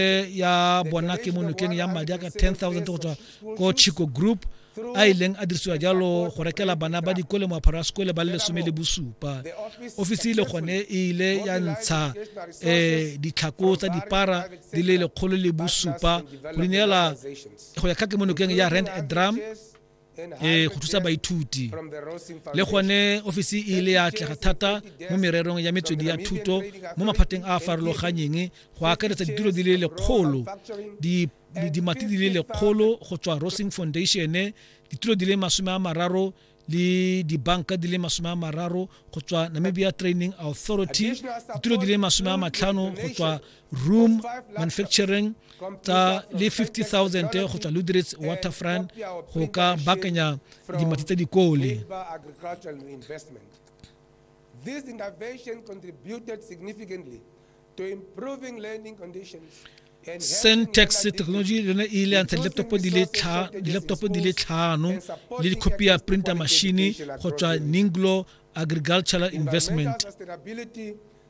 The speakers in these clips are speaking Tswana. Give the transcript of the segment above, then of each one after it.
e ya bona ke mo nokeng ya madi a ka 10000 go tswa ko chico group a ileng a dirisiwa jalo go rekela bana ba dikole moaparo wa sekole ba le lesome le bosupa ofisi le gone e ile ya ntsha um ditlhako tsa dipara di le lekgolo le bosupa go ineela go ya ka kemonokeng ya rand a drum e go thusa baithuti le gone ofisi e ile ya atlega thata mo mererong ya metswedi ya thuto mo maphateng a a farologanyeng go akaretsa ditiro di le lekgolo dimati di le lekgolo go tswa rosing foundation ditiro di le masome a mararo le dibanka di le masome a mararo go tswa namibia training authority ditiro di le masome a matlhano go tswa room manufacturing tsa le 50000 go tswa ludrits waterfront go ka bakanya dimati tse dikole This intervention contributed significantly to improving learning conditions Sentex technology le yone e ile ya ntsha di-laptop di le di-laptop di le tlhano le dikhopi ya printer machine go tswa ninglo agricultural investment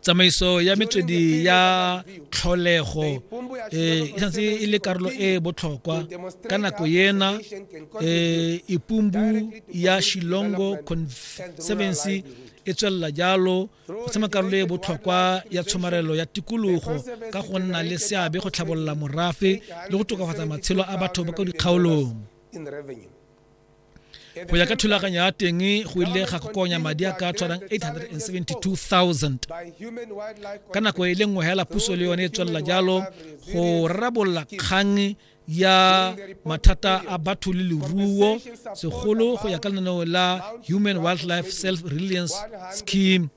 tsamaiso ya metswedi ya tlholego eh, e santse e le karolo e e botlhokwa ka nako ena eh, ipumbu ya shilongo conservancy e tswelela jalo go tsema karolo e botlhokwa ya tshomarelo ya tikologo ka go nna le seabe go tlhabolola morafe le go tokafatsa matshelo a batho ba ko dikgaolong go ya ka thulaganyo ya teng go ile ga kokonya madi a ka tshwanang 872000 ka nako e le nngwe hela puso le yone e tswelela jalo go rarabolola kgang ya mathata a batho le leruo segolo go ya ka lenaneo la human wildlife self reliance scheme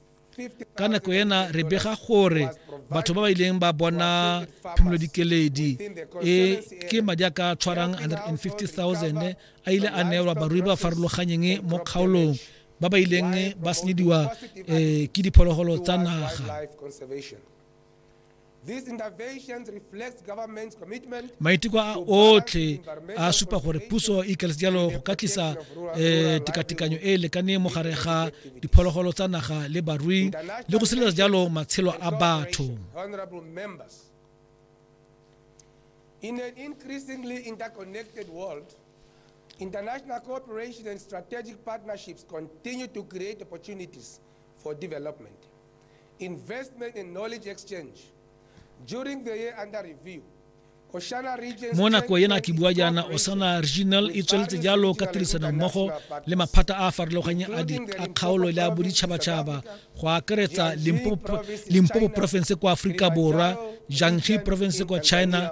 ka nako ena re bega gore batho ba ba ileng ba bona phimolodikeledi e ke madi a ka tshwarang 150000 a ile a neelwa barui ba farologanyeng mo kgaolong ba ba ileng ba senyediwa um ke diphologolo tsa naga maiteko a otlhe a supa gore puso e ikaletse jalo go ka tlisa um tekatekanyo e e lekaneng mo gare ga diphologolo tsa naga le barui le go sireletsa jalo matshelo a batho In an increasingly interconnected world, international cooperation and strategic partnerships continue to create opportunities for development, investment and knowledge exchange. During the year under review, Oshana region mo nako ena ke bua jaana osana regional e tsweletse jalo ka tirisano mmogo le maphata a a farologaneng a di a kgaolo le a boditšhabatšhaba go akaretsa limpopo province kwa aforika borwa jiangxi province kwa china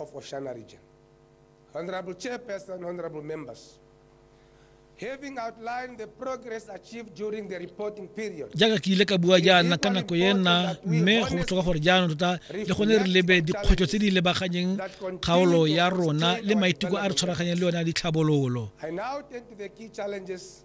of Oshana region. Honorable Chairperson, honorable members, having outlined the progress achieved during the reporting period, jaaka ke ile ka bua jaana ka nako ye nna mme go botlhoka gore jaanong tota le gone re lebe dikgwetlho tse di lebaganyeng kgaolo ya rona le maiteko a re tshwaraganyeng le yone a ditlhabololo I now turn to the key challenges